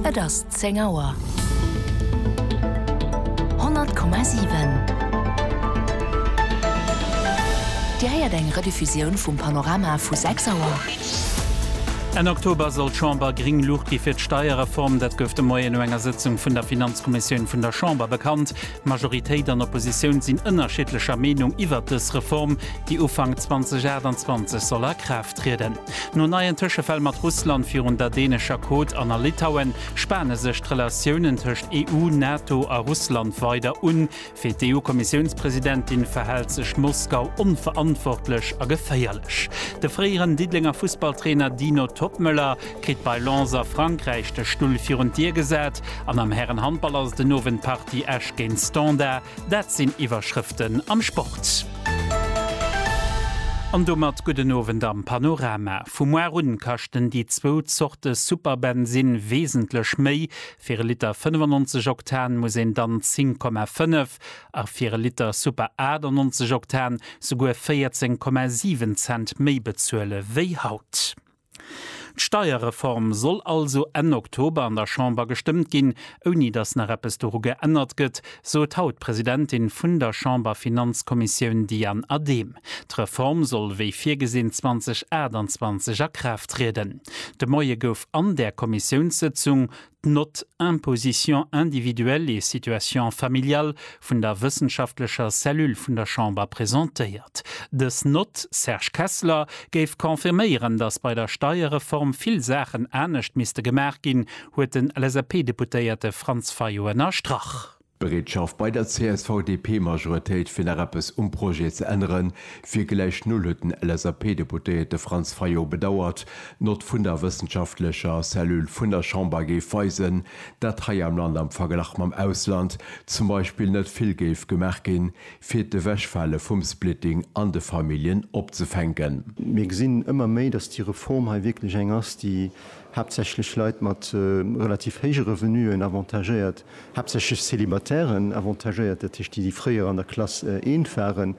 Et ass zéng Auer. 100,7 Dir héiert eng Rediffusioun vum Panorama vu 6 Auer. Enn Oktober soll d'Chamber gréng Luucht gi fir d'Steierreform. Dat gouf de Moien no enger Sëtzung vun der Finanzkommissioun vun der Chamber bekannt. Majoritéit an Oppositioun sinn ënnerschiddlecher Meenung iwwert dës Reform, déi Ufank 2028 soll a Kraaft trieden. No neien Tëschefäll mat Russland virun der dänescher Côte an a Litauen spane sech d'Relatiounen tëscht EU, NATO a Russland weider un. Fir d'EU-Kommissiounspresidentin verhält sech Moskau onverantwortlech a geféierlech. De fréieren Diddelenger Fussballtrainer Dino Toppmöller kritt bei Lens a Frankräich de Stull virun d'Dier gesat an am Hären-Handball ass et den Owend d'Partie Esch géint Standard. Dat sinn Iwwerschrëften am Sport. An domat gudden Owend am Panorama. Vu moar un kaschten déi zwou Zorte Superbensinn wesentlech méi, fir e Liter 95 Oktan muss een dann 10,5 a fir e Liter Super 98 Oktan souguer 14,7 Cent méi bezuele wéi haut. D'Steierreform soll also Enn Oktober an der Chamber gestëmmt ginn, ouni datt nach eppes doru geännert gëtt, sot haut d'Presidentin vun der Chamberfinanzkommissioun Diane Adehm. D'Reform soll wéi virgesinn 2028 a Kraaft trieden. De Moie gouf an där Kommissiounssëtzung d'Note Imposition individuelle et situation familiale vun der wëssenschaftlecher Cellule vun der Chamber presentéiert. Dës Note, Serge Kessler, géif confirméieren, datt bei der Steierreform vill Saachen anescht misste gemaach ginn, huet den LSAP-Deputéierte Franz Fayot ënnerstrach. D'Bereetschaft bei der CSV-DP-Majoritéit fir nach eppes um Projet ze ännere wier gläich null, huet den LSAP-Deputéierte Franz Fayot bedauert. D'Nott vun der wëssenschaftlecher Cellule vun der Chamber géif weisen, dat hei am Land am Verglach mam Ausland zum Beispill net vill géif gemaach ginn, fir d'Ewechfale vum Splitting an de Familljen opzefänken. Mir gesinn ëmmer méi, datt déi Reform hei wierklech eng ass, déi haaptsächlech Leit mat relativ héije Revenuen avantagéiert. haaptsächlech Célibataires avantagéiert, dat heescht déi, déi fréier an der Klass eent waren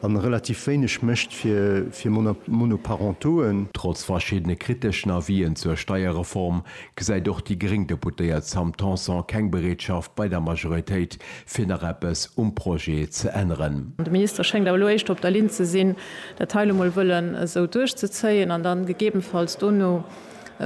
a relativ wéineg mécht fir Monoparentoen. Trotz verschiddene kriteschen Avisen zur Steierreform gesäit och déi gréng Deputéiert Sam Tanson keng Bereetschaft bei der Majoritéit, fir nach eppes um Projet ze änneren. De Minister schéngt awer elo éischter op der Linn ze sinn, dat hei elo mol wëllen esou duerchzezéien an dann gegebenfalls dono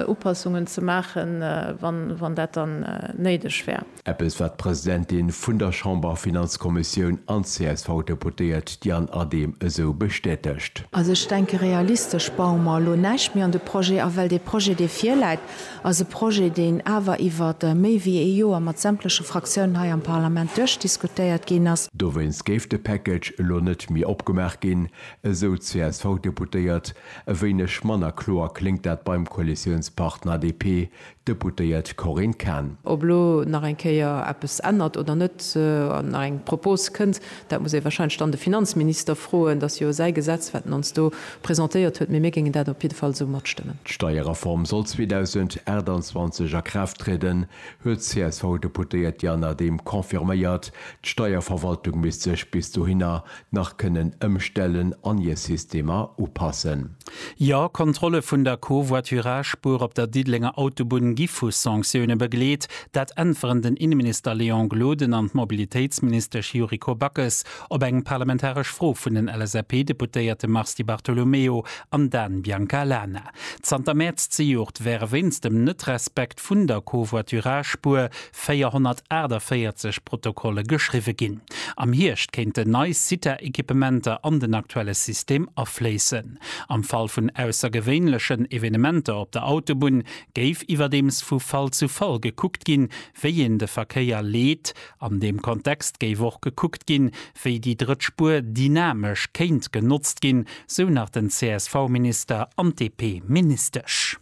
Upassungen ze maachen, wann dat dann néideg wär. Eppes, wat d'Presidentin vun der Chamberfinanzkommissioun an d'CSV-Deputéiert Diane Adehm esou bestätegt. Also ech denke, realistesch baue mer elo näischt méi an de Projet a, well dee Projet, dee virläit, ass e Projet, deen awer iwwert méi wéi ee Joer mat sämtleche Fraktiounen hei am Parlament duerchdiskutéiert ginn ass. Dowéinst géif de Package elo net méi opgemaach ginn, esou d'CSV-Deputéiert. E wéineg manner kloer kléngt dat beim Koalitiounspartner DP-Deputéiert Corinne Cahen. Ob elo nach eng Kéier eppes ännert oder net, an nach eng Propos kënnt, dat muss ee wahrscheinlech dann de Finanzminister froen. Dat ass jo säi Gesetz, wat en ons do presentéiert huet, mee mir géingen dat op jidde Fall esou matstëmmen. D'Steierreform soll 2028 a Kraaft trieden, huet d'CSV-Deputéiert Diane Adehm confirméiert. D'Steierverwaltung misst sech bis dohinner nach kënnen ëmstellen an hir Systemer upassen. Jo, Kontrolle vun der Covoiturage-Spuer op der Diddelenger Autobunn gi vu Sanktioune begleet. Dat äntweren den Inneminister Léon Gloden an d'Mobilitéitsministesch Yuriko Backes op eng parlamentaresch Fro vun den LSAP-Deputéierte Mars Di Bartolomeo an Dan Biancalana. Zanter Mäerz zejoert wäre wéinst dem Net-Respekt vun der Covoiturage-Spuer 448 Protokolle geschriwwe ginn. Am Hierscht kéinten nei CITA-Equipementer an den aktuelle System afléissen. Am Fall vun aussergewéinlechen Evenementer op der Autobunn géif iwwerdeems vu Fall zu Fall gekuckt ginn, wéi een de Verkéier leet. An deem Kontext géif och gekuckt ginn, wéi déi drëtt Spuer dynamesch kéint genotzt ginn, sou nach den CSV-Minister an d'DP-Ministesch.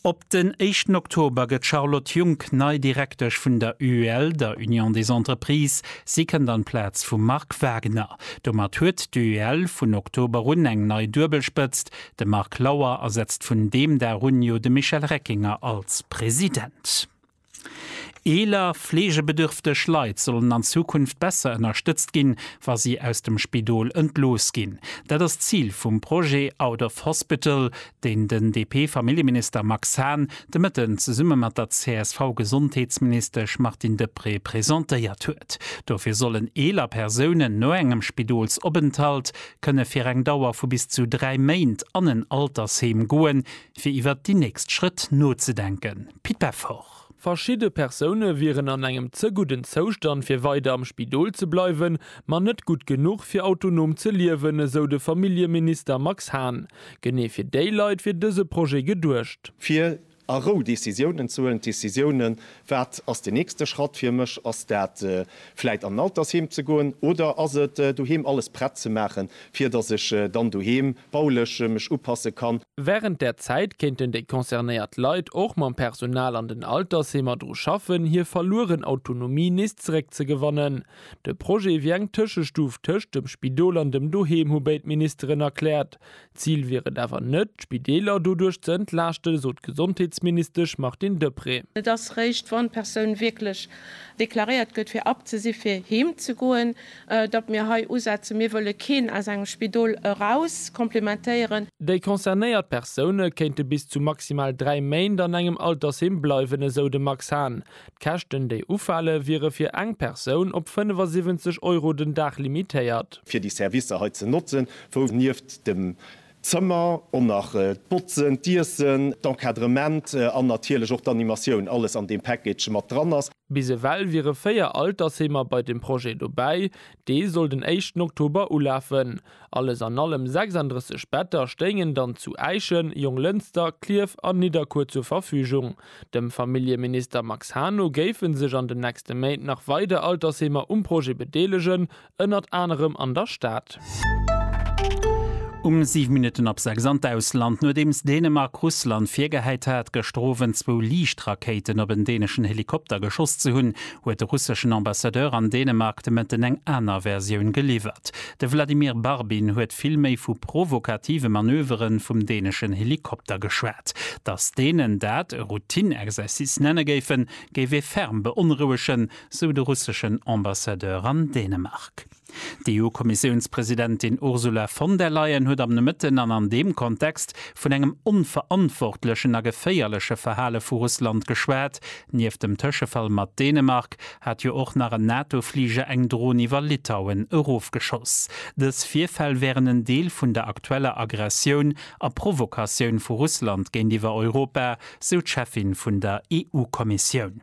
Op den éischten Oktober gëtt d'Charlotte Junck nei Direktesch vun der UEL, der Union des Entreprises. Si kënnt an d'Plaz vum Marc Wagner. Domat huet d'UEL vun Oktober un eng nei Duebelspëtzt, de Marc Lauer ersetzt vun deem Dag un jo de Michel Reckinger als President. Eeler, fleegebedürfteg Leit sollen an Zukunft besser ënnerstëtzt ginn, wa si aus dem Spidol entlooss ginn. Dat ass d'Zil vum Projet Out of Hospital, deen den DP-Familljeminister Max Hahn de Mëtten zesumme mat der CSV-Gesondheetsministesch Martine Deprez presentéiert huet. Dofir sollen eeler Persounen no engem Spidolsopenthalt kënne fir eng Dauer vu bis zu dräi Méint an en Altersheem goen, fir iwwert déi nächst Schrëtt nozedenken. Pit Peffer. Verschidde Persoune wieren an engem ze gudden Zoustand fir weider am Spidol ze bleiwen, ma net gutt genuch fir autonom ze liewen, esou de Familljeminister Max Hahn. Genee fir déi Leit wier dëse Projet geduecht. Fir a Rou Decisiounen ze huelen, Decisiounen, wat ass den nächste Schratt fir mech? Ass dat vläit an en Altersheem ze goen oder ass et doheem alles prett ze maachen, fir datt ech dann doheem bauleche mech upasse kann. Während där Zäit kéinten déi concernéiert Leit och mam Personal an den Altersheemer dru schaffen, hir verlueren Autonomie nees zeréckzegewannen. De Projet wier eng Tëschestuf tëscht dem Spidol an dem Doheem, hu béid Ministeren erkläert. D'Zil wier et awer net, d'Spideeler doduerch ze entlaaschten, sot d'Gesondheetsministesch Martine Deprez. Et ass réischt, wann d'Persoun wierklech deklaréiert gëtt, fir abzesi fir heem ze goen, datt mir hei usetzen. Mir wëlle keen aus engem Spidol eraus komplementéieren. Déi concernéiert Persoune kéinte bis zu maximal dräi Méint an engem Altersheem bleiwen, esou de Max Hahn. D'Käschten, déi ufale wiere fir eng Persoun op 75 Euro den Dag limitéiert. fir déi Servicer hei ze notzen, wou nieft dem D'Zëmmer an nach d'Botzen, d'Iessen, d'Encadrement an natierlech och d'Animatioun, alles an deem Package mat dran ass. Bis ewell wiere 4 Altersheemer bei dem Projet dobäi, dee soll den éischten Oktober ulafen. Alles an allem 36 Better stéingen dann zu Äischen, Jonglënster, Klierf an Nidderkuer zur Verfügung. Dem Familljeminister Max Hahn no géife sech an den nächste Méint nach weider Altersheemer um Projet bedeelegen, Ënnert anerem an der Stad. Um 7 Minutten ab 6 an d'Ausland, Nodeems Dänemark Russland virgehäit hat, gëschter Owend zwou Liichtrakéiten op en däneschen Helikopter geschoss ze hunn, huet de russeschen Ambassadeur an Dänemark de Mëtten eng aner Versioun geliwwert. De Vladimir Barbin huet vill méi vu provokative Manövere vum däneschen Helikopter geschwat. Datt Dänen dat e Routine-Exercice nenne géifen, géif ee ferm beonrouegen. sou de russeschen Ambassadeur an Dänemark. D'EU-Kommissiounspresidentin Ursula von der Leyen huet am Nomëtten an an deem Kontext vun engem onverantwortlechen a geféierleche Verhale vu Russland geschwat. Nieft dem Tëschefall mat Dänemark hat jo och nach en NATO-Fliger eng Dron iwwer Litauen erofgeschoss. Dës Virfäll wären en Deel vun der aktueller Aggressioun a Provokatioun vu Russland géintiwwer Europa, sou d'Cheffin vun der EU-Kommissioun.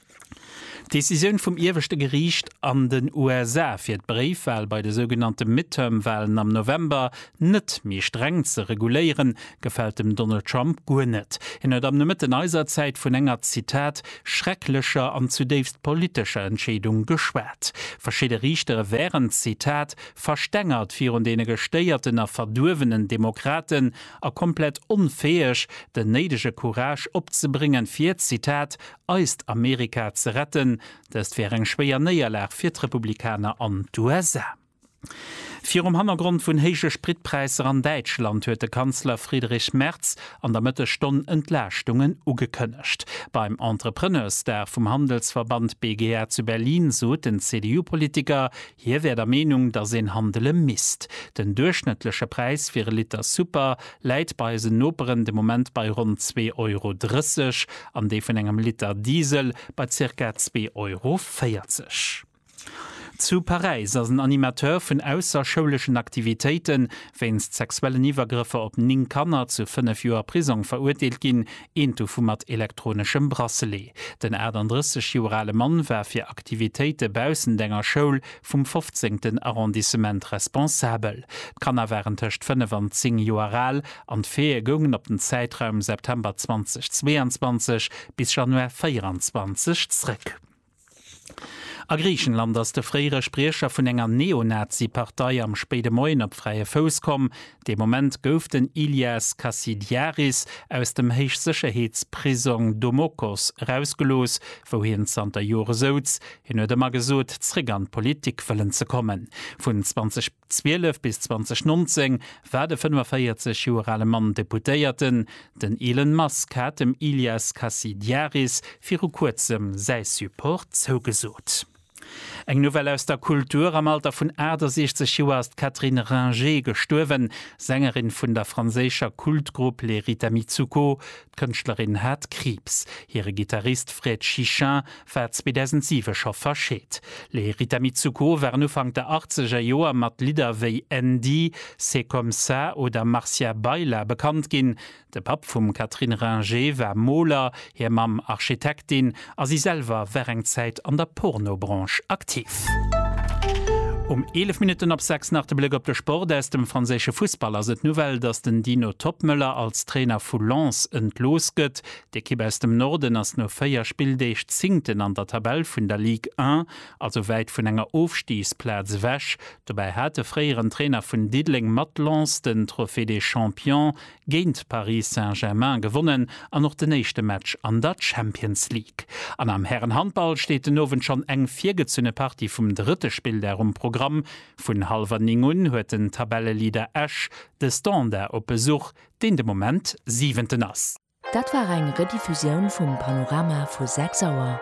D'Decisioun vum ieweschte Geriicht an den USA, fir d'Bréifwal bei de sougenannte Midterm-Walen am November net méi streng ze reguléieren, gefält dem Donald Trump guer net. Hien huet am Nomëtten eiser Zäit vun enger, Zitat, schrecklecher an zudéifst politescher Entscheedung geschwat. Verschidde Riichtere wären, Zitat, verstengert virun deene gestéierten a verduerwenen Demokraten a komplett onfäeg, den néidege Courage opzebréngen, fir, Zitat, eist Amerika ze retten. Dëst wär eng schwéier Néierlag fir d'Republikaner an d'USA. Virum Hannergrond vun héije Spritpräisser an Däitschland huet de Kanzler Friedrich Merz an der Mëttesstonn Entlaaschtungen ugekënnegt. Beim Entrepreneursdag vum Handelsverband BGA zu Berlin sot den CDU-Politiker, Hie wär der Meenung, datt een handele misst. Den duerchschnëttleche Präis fir e Liter Super läit bei eisen Noperen de Moment bei ronn zwee Euro 30 an dee vun engem Liter Diesel bei zirka zwee Euro 40. Zu Paräis ass en Animateur vun ausserschouleschen Aktivitéiten wéinst sexuellen Iwwergrëffer op 9 Kanner zu 5 Joer Prisong verurteelt ginn, Eent dovu mat elektroneschem Bracelet. Den 38 Joer ale Mann war fir Aktivitéite baussent enger Schoul vum fofzéngten Arrondissement responsabel. D'Kanner waren tëscht fënnef an zéng Joer al an d'Faite goungen op den Zäitraum September 2022 bis Januar 24 zréck. A Griichenland ass de fréiere Spriecher vun enger Neonazi-Partei am spéide Moien op fräie Fouss komm. Dee Moment gouf den Ilias Kassidiaris aus dem Héichsécherheetsprisong Domokos erausgelooss, wou hien zanter Jore souz. Hien huet ëmmer gesot, zréck an d'Politik wëllen ze kommen. Vun 20. 12 bis 2019 war de 45 Joer ale Mann Deputéierten. Den Elon Musk hat dem Ilias Kasidiaris viru kuerzem säi Support zougesot. Eng Nouvelle aus der Kultur, Am Alter vun 68 Joer ass d'Catherine Ringer gestuerwen. D'Sängerin vun der franséischer Kultgrupp Les Rita Mitsouko D'Kënschtlerin hat Kriibs. Hire Gittarist Fred Chichin war 2007 scho verscheet. Les Rita Mitsouko waren Ufank der achtzeger Joer mat Lidder wéi Andy, C'est comme ça oder Marcia Baila bekannt ginn. De Papp vum Catherine Ringer war Moler, hir Mamm Architektin. a si selwer war eng Zäit an der Porno-Branche aktiv. Um 11 Minutten op 6 nach de Blëck op de Sport aus dem franséische Fussball. Ass et d'Nouvelle, dass den Dino Toppmöller als Trainer vu Lens entlooss gëtt? D'Ekipp aus dem Norden ass no 4 Spilldeeg Zéngten an der Tabell vun der Ligue 1, also wäit vun enger Ofstigsplaz ewech. Dobäi hat de fréieren Trainer vun Diddeleng mat Lens den Trophée des Champions géint Paris Saint-Germain gewonnen an och den éischte Match an der Champions League. An am Härenhandball steet den Owend schonn eng virgezunne Partie vum drëtte Spilldag um Programm. Vun hallwer 9 un huet den Tabelleleader Esch de Standard op Besuch, deen de Moment Siwenten ass. Dat war eng Rediffusioun vum Panorama vu 6 Auer.